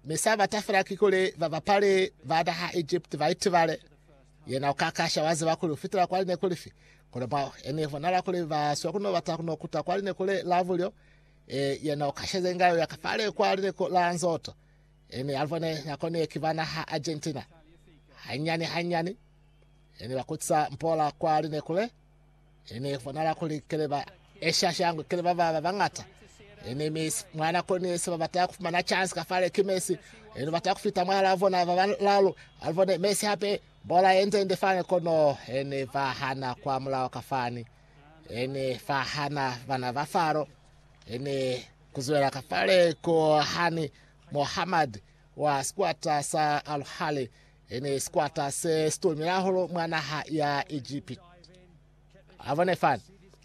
Mi sa bata fela kikuli babapali ba naha Egypt ba itibale. Yena ukakasha waziba kuli ufitela kwa lineku lifi. Kono mwa ene bonala kuli ba swa kuno bata kuno kuta kwa lineku le la bulyo. E, yena ukasheze inga uya kafale kwa lineku la nzoto. Ene alibone nakoni ye ki ba naha Argentina. Hanyani hanyani, ene bakutisa mpola kwa lineku le. He ne bonala kuli kele ba esha shangwe kele ba ba bañata. He ne misi mwana koni yese ba bata kufumana chance ka fale ki mesi. He ne bata kufita mwahala bona ba balalu alivone mesi hape bola yenze nde fani kono he ne ba hana kwa mulao ka fani. He ne fa hana bana ba faro. He ne kuzwela ka fale ko hani Mohammed wa squatter sa Al Ahly E ne sikwata se si tomile hahulu mwa naha ya Egipiti. A bone fani.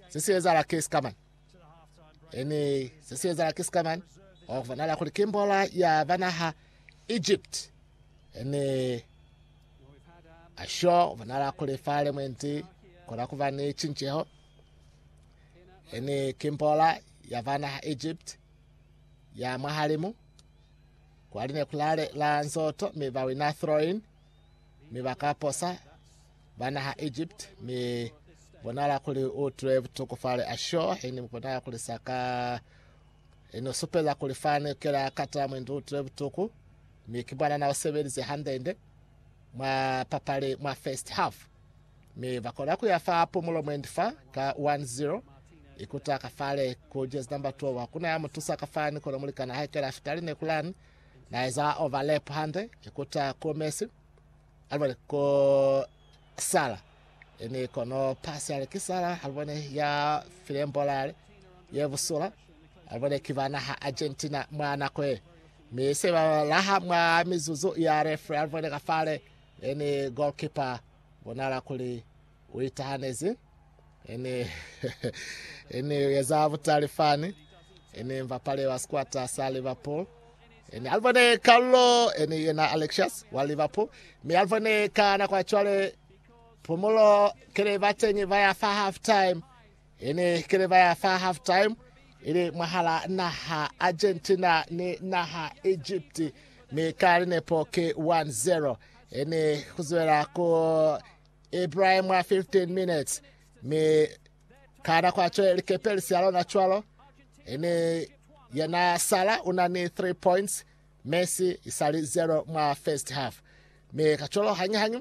Se si ezala ki sikamani. E ne se si ezala ki sikamani. Wa kubonala kuli ki mbola ya ba naha Egipiti. E ne asho bonala kuli fa lemwenti kona kuba ni cinceho. E ne ki mbola ya ba naha Egipiti ya mwahalimu. Kwa line ku lale la nzoto mi ba wina Throin, mi ba ka posa ba naha Egypt, mi bonala kuli u tule butuku fale Ashore, ini mu bonala kuli sa ka ini u supeza kuli fani kela kata mwendi u tule butuku, mi ki mwanana u sebelize handende mwa papali mwa first half. mi ba kona ku ya fa Pumulo mwendi fa ka 10 ikuta ka fale ku jezi number 12 kuna ya mutusa ka fani kono mulikana haikela fita line kulani na eza overlap hande ikuta ku Messi alibone ku Sala ini kono pasi ale kisala alibone ya filembolale ye busula alibone kibana ha Argentina mwana kwe mi se ba laha mwa mizuzu ya refre alibone ka fale Ene goalkeeper bonahala kuli u itahanezi. Ene ene u eza butali fani. Ene mbapale wa sikwata sa Liverpool. Ene alibone Carlo ene yena Alexius wa Liverpool. Mi alibone ka nako ya cwale Phumulo kele batenyi ba ya fa half time. Hene keleba ya fa half time ili mwahala naha Argentina ni naha Egypt mi ka linepo ki 1-0. Hene kuzwela ku Ibrahim mwa 15 minutes mi ka nako atwe likepe lisia lona cwalo. Hene yena Sala una ni 3 points Messi isali 0 mwa first half. Mi kacwalo hanyi hanyi